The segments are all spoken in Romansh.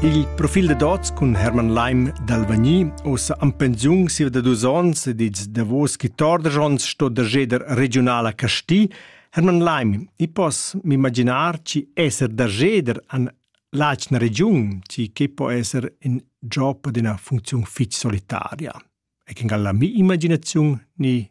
Il profil da dots cun Hermann Leim d'Alvagni, ossa am pensiun siva da dus ons ed ils davos chi torder ons sto da jeder regionala Casti, Hermann Leim, i pos m'imaginar chi esser da jeder an l'atgna regiun, chi che po esser in job ad una funzion fitch solitaria. E che galla mi imaginaziun ni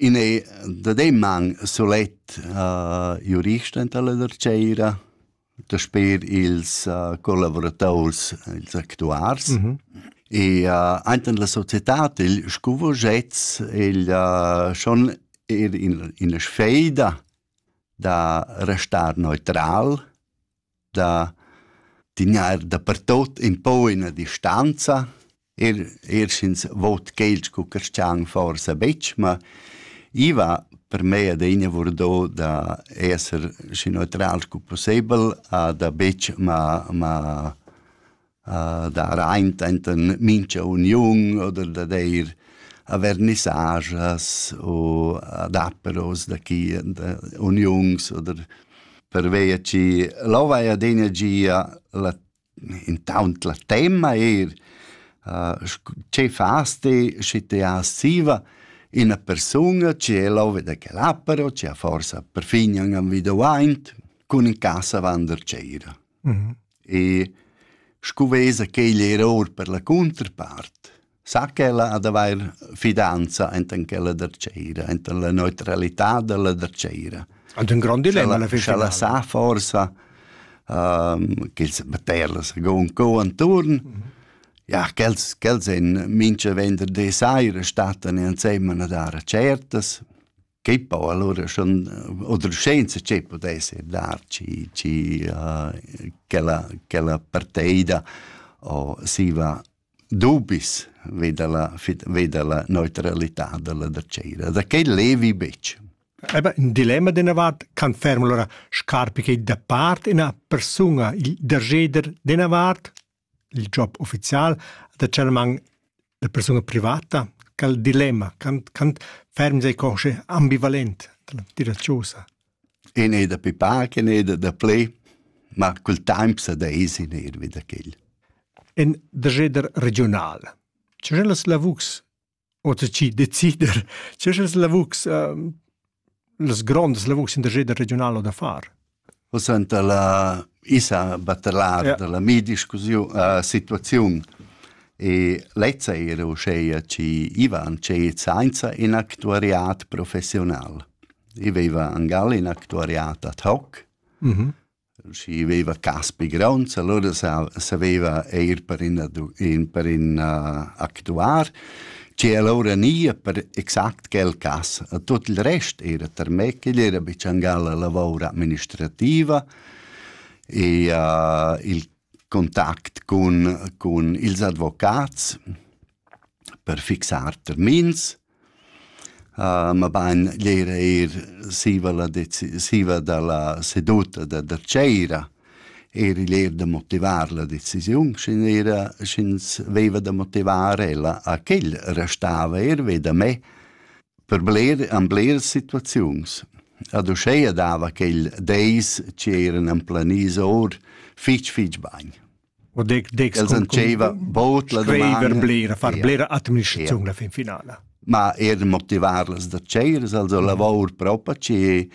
In è dademman sulet jurist enta la dartgeira, dasper ils collavurators, ils actuars. E aint in la societad il scuvogetz, el schon er in ina sfeida da restar neutral da dingar dapertot in po ina distanza, er er sch'ins vot quel scu carstgaun forsa betg, ma i va per mei adegna vardo da esser schi neutral scu pussebel a da betg ma ma dar aint enten mincha uniun oder da deir avernissagias u adapperos da chi da uniuns oder pervia chi lò vai adegna gia la intaunt la temma eir che fas ti schi ti hast siva ina persunga che è lò da quel appero che ha forsa perfin an individuaint cun in casa vander cera. E scu vesa quegl error per la cunterpart, sa ch'ella ha d'avair fidanza enten ch'ella dertscheira, enten la neutralità dalla dertscheira. Ant ün grond dilemma alla fin finala. Sch'ella sa forsa ehm ch'els baterla secund co anturn, ja ch'els ch'els en mincha venderdi saira stattan insemmel a dar certas. che poi allora schon oder scienza che potesse dar ci ci uh, che la che la parteida o si va dubis veda la veda la neutralità della da cera da che levi bec Eba, in dilemma della vart can ferm allora scarpi che da part ina persona il dergeder della vart il job ufficial da Celmann da persuna privata quel dilemma quant quant ferm sei consci ambivalent dalla tira chosa in ei da pipar che ei da, da ple ma col temps da esin ir vi da quel en der jeder regional C'è las lavux Oter chi decider, che sch'els lavurs, ehm, las grondas lavurs in der jeder regional o da far. O senta la isa batelar ja. della mi discussiun uh, situaziun e lezza era uscheia ci Ivan ce sainza in actuariat professional. I veva angal in actuariat ad hoc, mm -hmm. Schi veiva Caspi Gronds, alura saveva eir per in per in actuar, che alura nia per exact quel cas. Tuot il rest era tarmè, ch'igl era be tschancar la lavor administrativa e il contact cun cun ils advocats per fixar termins mabain l'eir eir siva la deci- siva da la seduta da da tschera eir igl eir da motivar la decisiun, sch'ün era sch'ins veiva da motivar ella a ch'el restava eir ve da me per bler an bleras situaziuns. Ad uscheia dava quel deis chi eiran amplaniso our fich fich bagn. O dec dec els antscheva bod la dumanda blera far blera administraziun la fin finala ma er motivarlas da tscheiras also lavor propa ci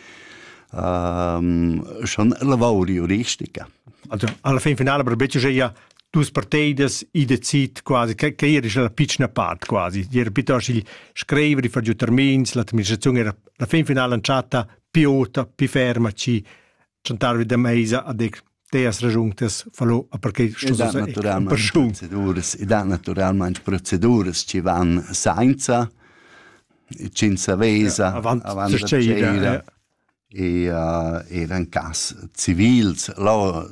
ehm schon lavor juristica also alla fin finala per becce ja dus parteidas i decid quasi che che era la piccina part quasi era piuttosto il scrivere far giù termins l'administrazione era la fin finala chatta piota pi ferma ci chantarvi da meisa a dec teas ragiuntas falò a perquei che sto sa procedures i da naturalmente proceduras ci van sainza cinza vesa avant da e er en cas civils là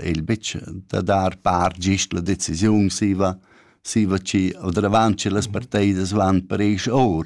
il bitch da dar par gist la decisiun siva siva ci o davanti las parteidas van per eis or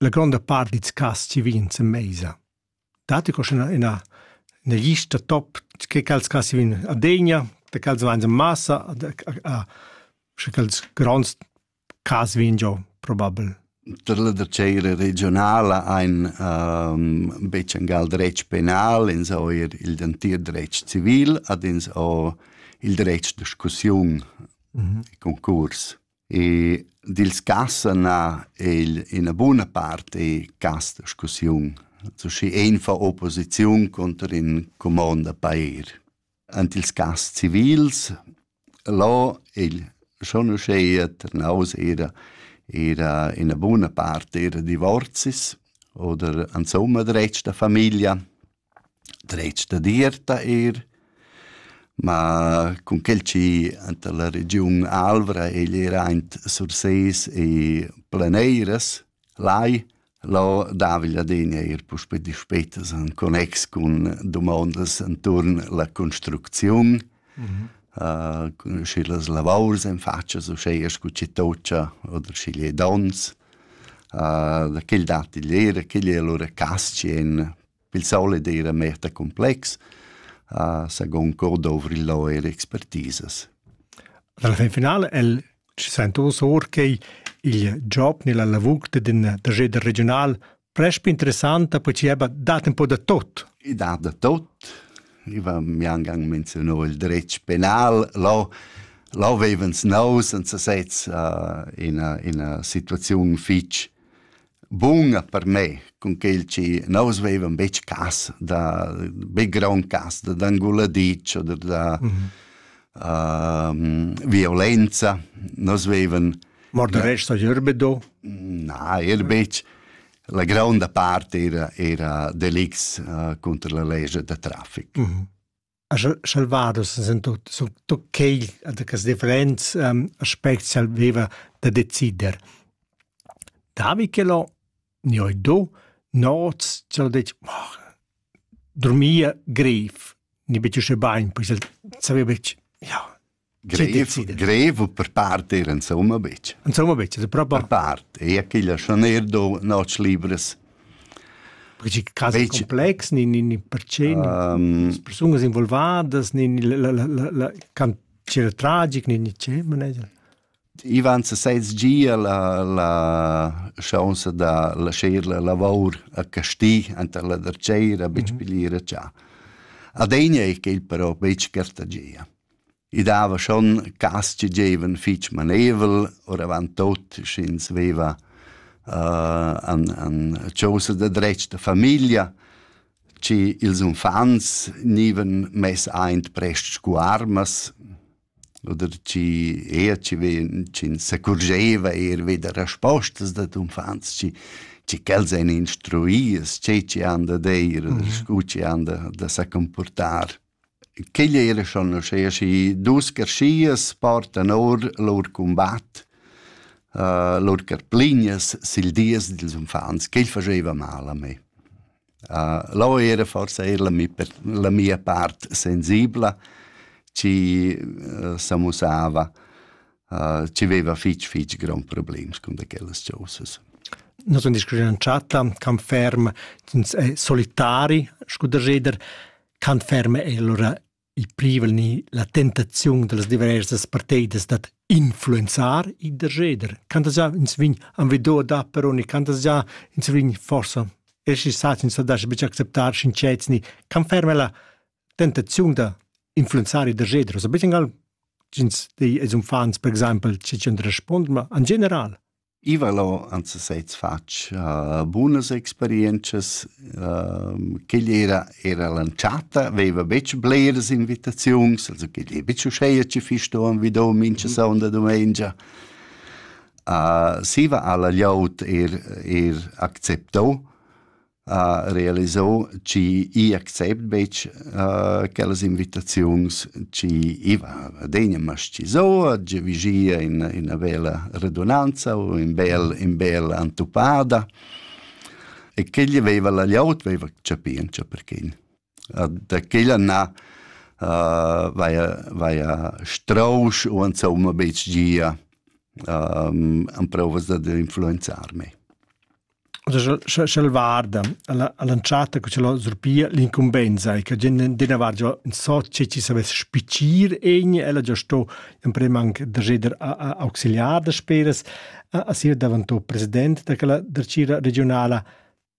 la gronda part dils cass chi vegnan sen meisa. Datti co ina, ina, ina lista top che quels cass chi vegnan a degna, da quels vain en massa, a, sche quels gronds cas vegn giò probabel. Tar la tschera regionala ein um, betg en gal dretg penal, ins ho er il dentir dretg civil, ad ins ho il dretg discussiun, mm -hmm. concurs. E dils cassen ha el ina buna part e cast discussiun. Schi ein fa opposiziun conter in comond da pair. Ant ils cass civils là il schon uschea Trnaus era era ina buna part era divorzis oder insomma dretg da familia. dretg dad ir da eir. Ma cun quel chi anta la regiun Alvra egl era aint Sursés e Planeiras, lai, lo davigl adegna eir puspè dispetas in connex cun dumondas inturn la construcziun, uh, schi las lavours en fatschas uschea scu chi toccia oder schi gliedons. Da quel datti l'eira, quel es lura cas-tschient. Il solit eira meta cumplex. Sagun co dovr'lo eir expertisas. Alla fin finala el ci sainto or che il job nella lavur d'ün trageder regiunal presp interessanta perché ebba dat un po da tot. I dat da tot. Iva mi angang menzionò il dretg penal, lo lo vevens nous senza sez uh, ina ina situaziun fitch bunga per me con quel ci nous vevan bec cas da be gran cas da d'anguladic oder da mm -hmm. uh, violenza nos vevan Mort no. resta gerbedo? Na, er betg. La gronda part era, era delicts uh, contra la legge da traffic. Mm -hmm. Salvados sind tutto quel che differents um, aspects aveva da decider. Davicelo, ne ho do, noz, cel dec, oh, dormia greif, ne betg usce bain, poi saveva ja, Grev, grev per part era insomma betg. Insomma betg, per part. Per part, e quella schon er do noc libres. Perché casi betg... complex, ni, ni, ni perché um, ni persunas involvadas, ni, ni la, la, la, la cantiere tragic, ni, ni c'è, manager? Ivan se sez gia la, la chance da lasciar la lavor a Casti anta la derceira, betg mm -hmm. pigliere già. Adegna è quel però betg cartagia. I dava schon cas che gievan fich maneivel, oravant tot sch'ins veva uh, an, an chosa da dretg da famiglia, che ils unfants gnivan mess aint prest scu armas, oder chi eir chi ven, chi s'accurgeva eir vi da respostas dad unfants, chi chi quels ein instruias, tgei chi han da deir, mm -hmm. scu chi han da, da sa comportar. Quigl eir schon uschea schi dus carschias portan our lur cumbat, lur carplignas sül dies dils uffants. Quel fageva mal a me. Lò era forsa eir la mi per la mia part sensibla, chi s'amussava, chi veva fich fich gronds problems cun da quellas chosas. Nus sun discurrü in chatta, camp ferm, ins è solitari, scu da jeder. Quant ferma è allura il privel ni la tentaziun da las diversas parteidas dad influenzar il derscheder? Quantas gia ins vegn envido da peroni, quantas gia ins vegn forsa essi sats ins da betg acceptar sincets ni quant ferma è la tentaziun da influenzar il derscheder? Also betg ins di als uffants per exempel, che ti respond, ma en general. I vala ant sesez fatg uh, bunas experientschas. Uh, quegl era, era l'entschatta, veva betg bleras invitaziuns, also quegl è betg uscheia che fi sto vi do mincha mhm. sonda domengia. Uh, siva alla gliaut er, er accepto, ha realisau chi i accept betg uh, quellas invitaziuns chi iva adegna mascizou, tge vigia in ina vela redunanza u in bel in bel antupada e che gli veva la liaut veva capì en perché da quella na vaia vaia strousch u insomma betg gia amprovas dad influenzarme. Sche sch'el varda alla all'entschatta che c'è surpia l'incumbensa e che gen dina var già in so che ci savess spicir egni ella già sto in prem anche da jeder auxiliar da speras a a sia davantò president da quella da cira regionala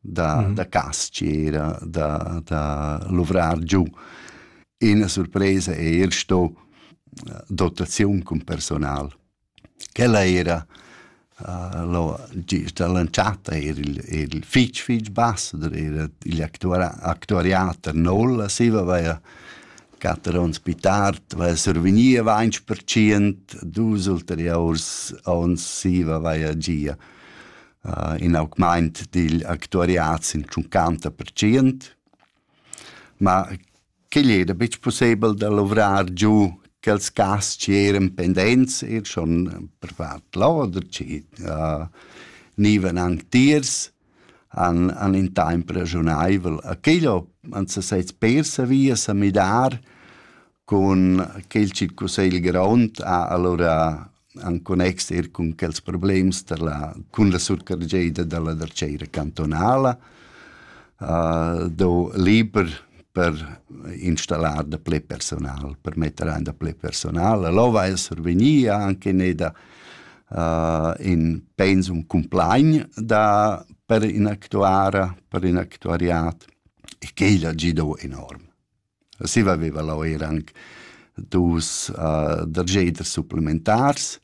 da, mm -hmm. da castiera, da, da luvrar giù. Ina surpresa è er sto eh, dotaziun cun personal. Quella era uh, lo, gista lanciata era il, il fitch fitch basser, era il actuariater Nolla, si aveva quatter onns pitart, aveva survegnia 20%, dus ulteriors onns si aveva gia. uh, in augment digl actuariat sin 50%, ma quegl era betg pussebel da luvrar giu quels cas che eran pendents, er schon per vart loder, che uh, nivan antiers, an, an in temp ragiunaivel. A quello han se sets persa via sa midar cun quel circusegl grond ha allora en connex er cun quels problems da la, cun la surcargeida da la darceira cantonala, uh, do liber per installar da ple personal, per metter ein da ple personal. L'ova è survegnì anche neda uh, in pensum complain da, per in actuara, per in actuariat e quella gido enorm. Siva veva leu era anc dus uh, dargeders supplementars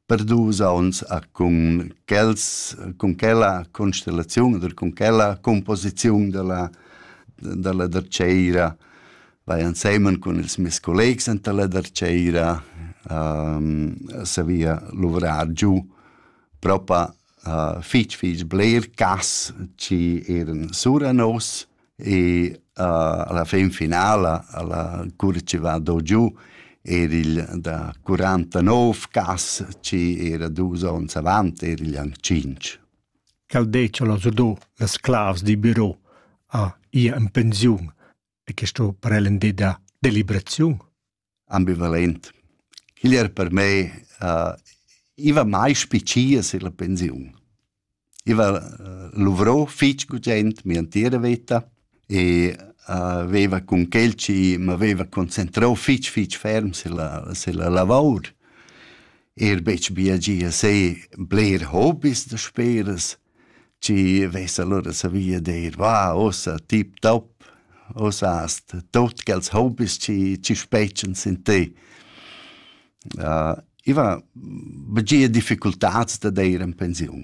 per dus onns uh, cun quels cun quella constellaziun oder cun quella composiziun dalla dalla dartgeira vai ensemen cun ils mes collegs enta la dartgeira um, savia luvrar giu propa uh, fitg fitg bler cas ci eran sura nos e uh, alla fin finala alla curva ci va do giù era il da 49 gas ci era dus ons avant era il anche 5 cal deciola so do las clavs di bureau a ia in pensiun e questo per el de da deliberazione ambivalent. Quel era per me uh, iva mai spiccia sur la pensiun. Iva uh, luvrò fitg gugent mia entira vita e uh, veva cun quel ci m'aveva concentrò fitg fitg ferm sulla, sulla lavor. Er betg bia gia se bler hobbies da speras, Ci vess allura savia dir, va, ussa tip top, ussa hast tot quels hobbies ci, ci spetschens in te. Uh, I va begia difficultats da deir in pensiun.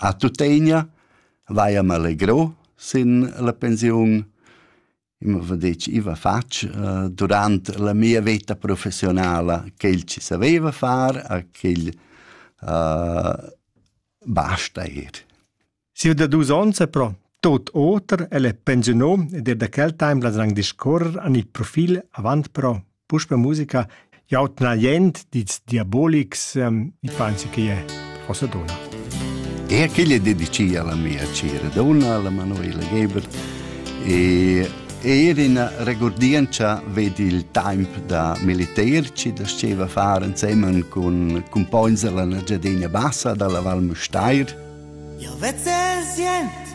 A tuttegna vaia m'allegro sin la pensiun, Eu m'ava detg, i va fatg durant la mia veta professionala quel chi saveva far a quel basta eir. Sieu da dus ons è però tot oter, el è pensiunà ed er da quel temp las rang discorrer an il profil avant però Puspe musica jau tna jent dits diabolics, um, i pensi che è forse dona. E aquella dedicia alla mia cira donna, alla Manuela Geber, e er in regordienza vedi il tempo da militerci da sceva fare insieme con con poins della Giardina Bassa dalla Val Mustair. Io vezze sient